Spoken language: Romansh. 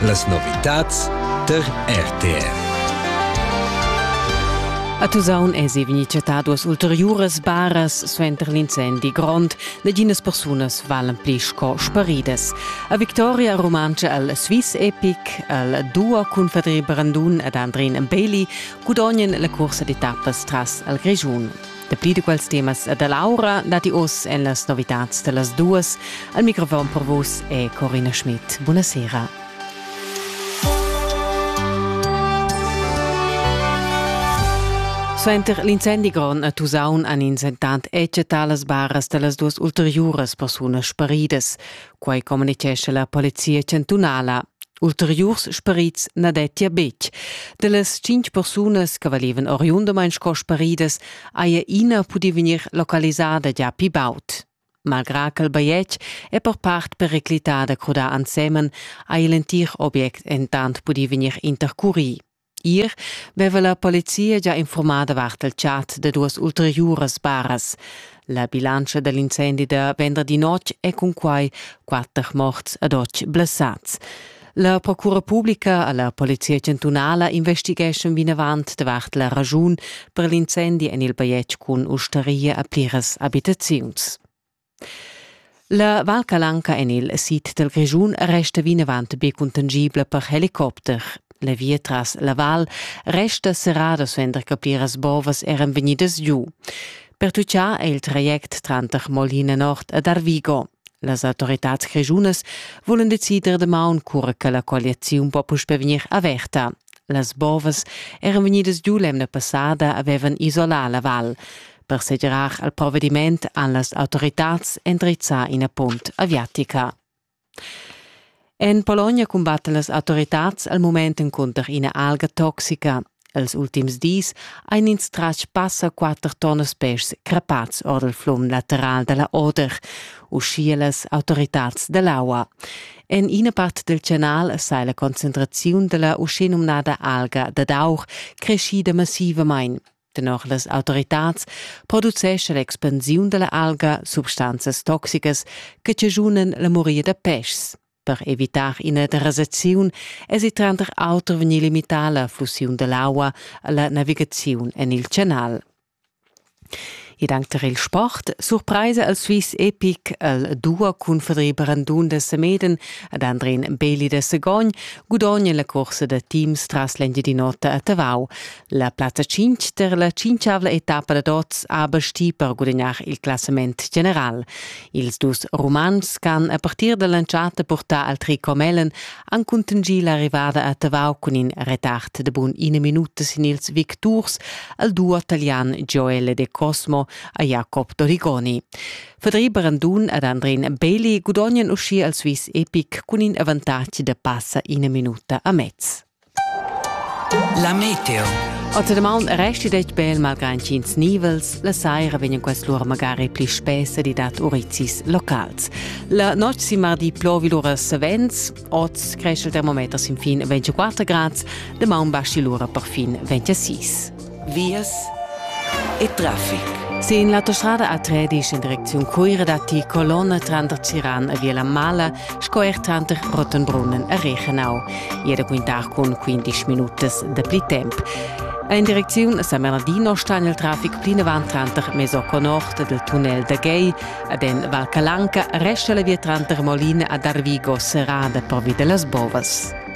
Las novitads tar RTR. A Tusaun èsi vegnì chattà duas ulteriuras baras suenter l'incendi grond. Naginas persunas valan pli sco sparidas. A Victoria rumantscha al Swiss Epic, al duo cun Fadri Brandun ed Andrin Bailey gudognan la cursa di tappas tras al Grischun. Dapi da quels temas e da l'aura datti oz en las novitads da las duas. Al microfon per vus è Corina Schmidt. Buonasera. Suenter l'incendi grond a Tusaun han ins entant eccettà las baras da las duas ulteriuras persunas sparidas. Quai communitgescha la polizia chantunala. Ulteriurs sperits na dettia betg. Da las tschintg persunas che valevan oriundamain sco speridas haja ina pudì vegnir localisada già pli baud. Malgrà ch'el bajetg è per part periclitada crudà ensemen, ha il entir obiect entant pudì vegnir intercurì. Ir veva la polizia già informada vart del chat da duas ulteriuras baras. La bilantscha dell'incendi da venderdi notg è cun quai quatter morts ad oc blessats. La Procura Publica alla Polizia Chantunala investigeschon vinavant davart la ragiun per l'incendi en il bajetg cun ustaria a pliras abitaziuns. La Val Calanca en il sid dal Grischun resta vinavant be cuntangibla per helicopter. La via tras la val resta serrada suenter che pliras bovas eran vegnidas giu. Pertutgà è il traject tranter Molina Nord ed Arvigo. Las autoritads grischunas volen decider damaun cura che la colliaziun po puspè vegnir averta. Las bovas eran vegnidas giu l'emna passada avevan isolà la val. per segirar al provvediment han las autoritads endrizzà ina punt aviatica. En Polonia cumbattan las autoritads al moment encunter ina alga toxica. Els ultims dis ein ins tratg passa quatter tonnas pèschs crepats ord il flum lateral dalla Oder, uschia las autoritads dall'aua. En ina part del canal sai la concentraziun della uschinumnada alga dad aur creschida massivamain. Tenor las autoritads producescha l'expansiun dalla alga substanzas toxicas che chaschunan la moria da peschs. Per evitar ina derasaziun èsi tranter auter vegnì limità la fusiun dall'aua alla navigaziun en il canal. Ed anche per il sport surpresa al Swiss Epic al duo cun Fedri Brandun da Semeden ad Andrin Beli da Segogn gudogna la corsa da teams tras l'Engiadin'Ota a Tavau. La plaza 5 der la cinchavla etappa da oz ha basti per gudignar il classament general. Ils dus Rumans can a partir dall'entschatta portar al tricot mellen han contingì l'arrivada a Tavau cun in retard de bun ina minuta sin ils victurs al duo italian Joele De Cosmo a Jacob Dorigoni. Fedri Brandun ed Andrin Bailey gudognan uscì al Swiss Epic cun in avantatg da passa ina minuta a mezz. La meteo. Oter damaun resti det bel malgrad ch'ins nivels, la saira vegnan quest lur magari pli spessa di dat urizis locals. La notg si mardi plovi lura savens, oz cresce il termometer sin fin 24 grads, damaun basci lura per fin 26. vias e traffic. Sin l'autostrada A13 in direcziun Cuira datti colonna tranter Ciran e Via la Mala sco er tranter Rottenbrunnen e Reichenau. Ier da quintar cun 15 minutas da pli temp. In direcziun San Bernardino sta il traffic plinavant tranter Mesocco Nord del tunnel da Gay ad en Val Calanca resta la via tranter Molina ad Arvigo serrada pervi de las bovas.